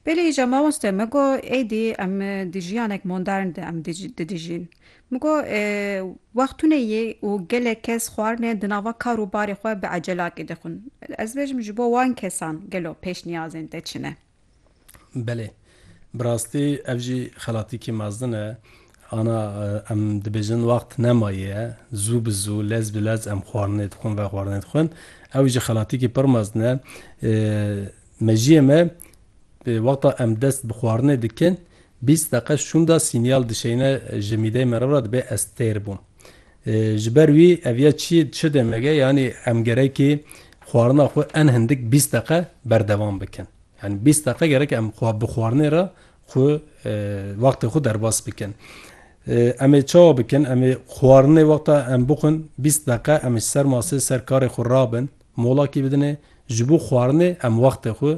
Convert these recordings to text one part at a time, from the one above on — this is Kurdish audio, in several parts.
Pêlê îca mamoste min got êdî em di jiyanek mondern de em didijîn. Min got wext tune yê û gelek kes xwarine di nava kar û barê xwe bi ecelakê dixwin. Ez dibêjim ji bo wan kesan gelo pêşniyazên te çi ne? Belê. Bi rastî ev jî xelatîkî mezin e. Ana em dibêjin waxt nemayî ye, zû bi zû, lez bi lez em xwarinê dixwin ve xwarinê dixwin. Ew jî xelatîkî pir mezin e. Mejiyê me wexta em dest bi xwarinê dikin bîst deqe şûnda sînyal dişeyne ji mîdeyê meriv re dibê ez têr bûm. Ji ber wî ev ya çi çi demege yanî em gerekî xwarina xwe en hindik bîst deqe berdewam bikin. Yanî bîst deqe gerek em bi xwarinê re xwe wextê xwe derbas bikin. Em ê çawa bikin? Em ê xwarinê wexta em bixwin bîst deqe em ê ji ser masê ser karê xwe rabin, molakî bidinê. Ji bo xwarinê em wextê xwe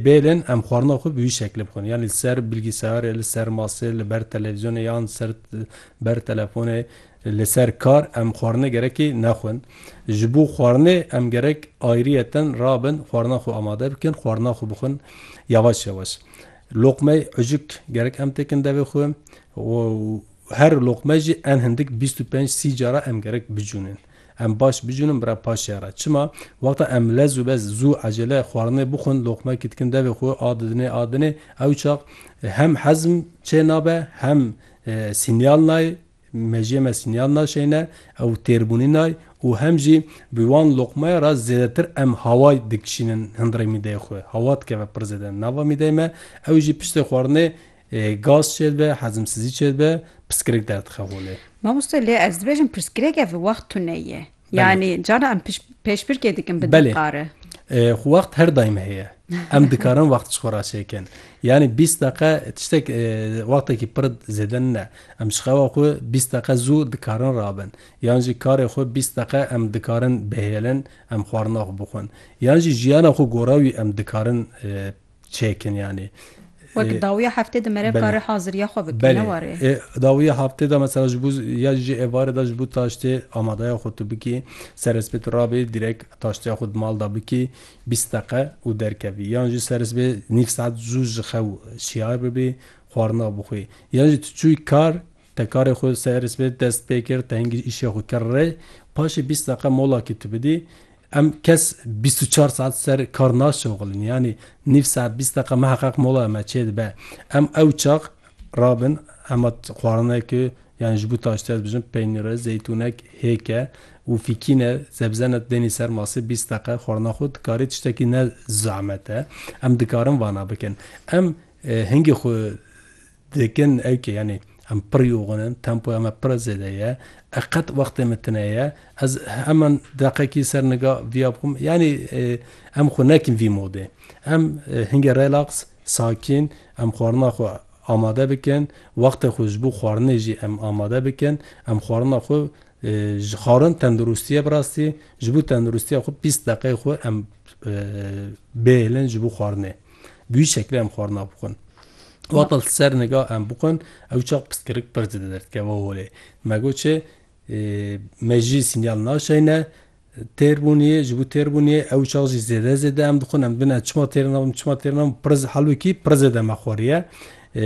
bêlin, em xwarina xwe bi wî şeklê bixwin. Yanî li ser bilgîseyarê, li ser masê, li ber televîzyonê yan li ser ber telefonê Li ser kar em xwarina gerekî nexwin. Ji bo xwarinê em gerek ayriyeten rabin xwarina xwe amade bikin, xwarina xwe bixwin yewaş yewaş. Loqmey ujik gerek em tekin devê xwe û her loqme jî en hindik bîst û pênc sî cara em gerek bicûnin. Em baş bicûnin bira paşiya re. Çima? Wexta em lez û bez zû ecele xwarinê bixwin, loqmekî dikin devê xwe a didinê a dinê, ew çax hem hezm çênabe hem sînyal nayê Mejiyê me sînyal naşeyne ew têrbûnî nay û hem jî bi wan loqmaya re zêdetir em hawa dikişînin hundirê mîdeyê xwe. Hawa dikeve pir zêde nava mîdeyê me. Ew jî piştê xwarinê gas çêdibe, hezimsizî çêdibe, piskirik derdixevolê. Mamoste lê ez dibêjim pirsgirêk ev wextûnê ye. Yanî cana em pêşbirkê dikin bi deh qare. Xwe wext her daîm heye. Em dikarin wext ji xwe re çêkin. Yanî bîst deqe tiştek wextekî pir zêde ne. Em ji xewa xwe bîst deqe zû dikarin rabin. Yan jî karê xwe bîst deqe em dikarin bihêlin, em xwarina xwe bixwin. Yan jî jiyana xwe gora wî em dikarin çêkin yanî Wek dawiya heftê de mere kare haziriya xwe bike ne warê. Belê. Dawiya heftê de mesela ji bo ya jî êvarê de ji bo taştê amadaya xwe tu bikî serespê tu rabî direk taştiya xwe di mal de bikî bîst deqe û derkevî. Yan jî serespê nîv saet zû ji xew şiyar bibî xwarina bixwî. Yan jî tu çûyî kar Te karê xwe servis bê dest pê kir, te hingî îşê xwe kir rê, paşê bîst deqe mola kî tu bidî, em kes bîst û çar saet ser kar naşoxilin, yanî nîv saet bîst deqe miheqeq mola me çê dibe. Em ew çax rabin hema xwarine ki yanî ji bo taştiya ez bijim peynîr e, zeytûnek, hêk e û fîkîn e, zebzen e denî ser masê bîst deqe xwarina xwe dikarî tiştekî ne zehmet e. Em dikarin vana bikin. Em hingî xwe. Dikin ew ke yanî em pir yoxin in, tempoya me pir zêde ye, e qet wextê min tine ye, ez heman deqekî ser niga viya bikim, yanî em xwe nekin vî modê. Em hinge relax, sakîn em xwarina xwe amade bikin, wextê xwe ji bo xwarinê jî em amade bikin, em xwarina xwe ji xwarin tenduristî ye bi rastî, ji bo tenduristiya xwe bîst deqeyê xwe em bêhêlin ji bo xwarinê. Bi wî şekilê em xwarina bixwin. Wexta li ser niga em bixwin, ew çax piskirik pir zêde derdikeve holê. Me got çi? Me jî sînyal naşeyne, têrbûniyê, ji bo têrbûniyê ew çax jî zêde zêde em dixwin, em dibîne çima têr nabim, çima têr nabim, pir helwekî pir zêde me xweriye,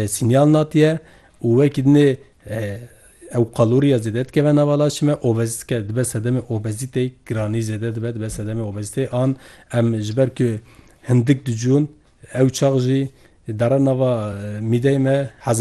sînyal natiye û wekî dinê Ew kaloriya zêde dikeve nava laşê me, obezîte dikeve, dibe sedemê obezîteyê, giranî zêde dibe, dibe sedemê obezîteyê an em ji ber ku hindik dicûn ew çax jî dere nava mîdeyê me,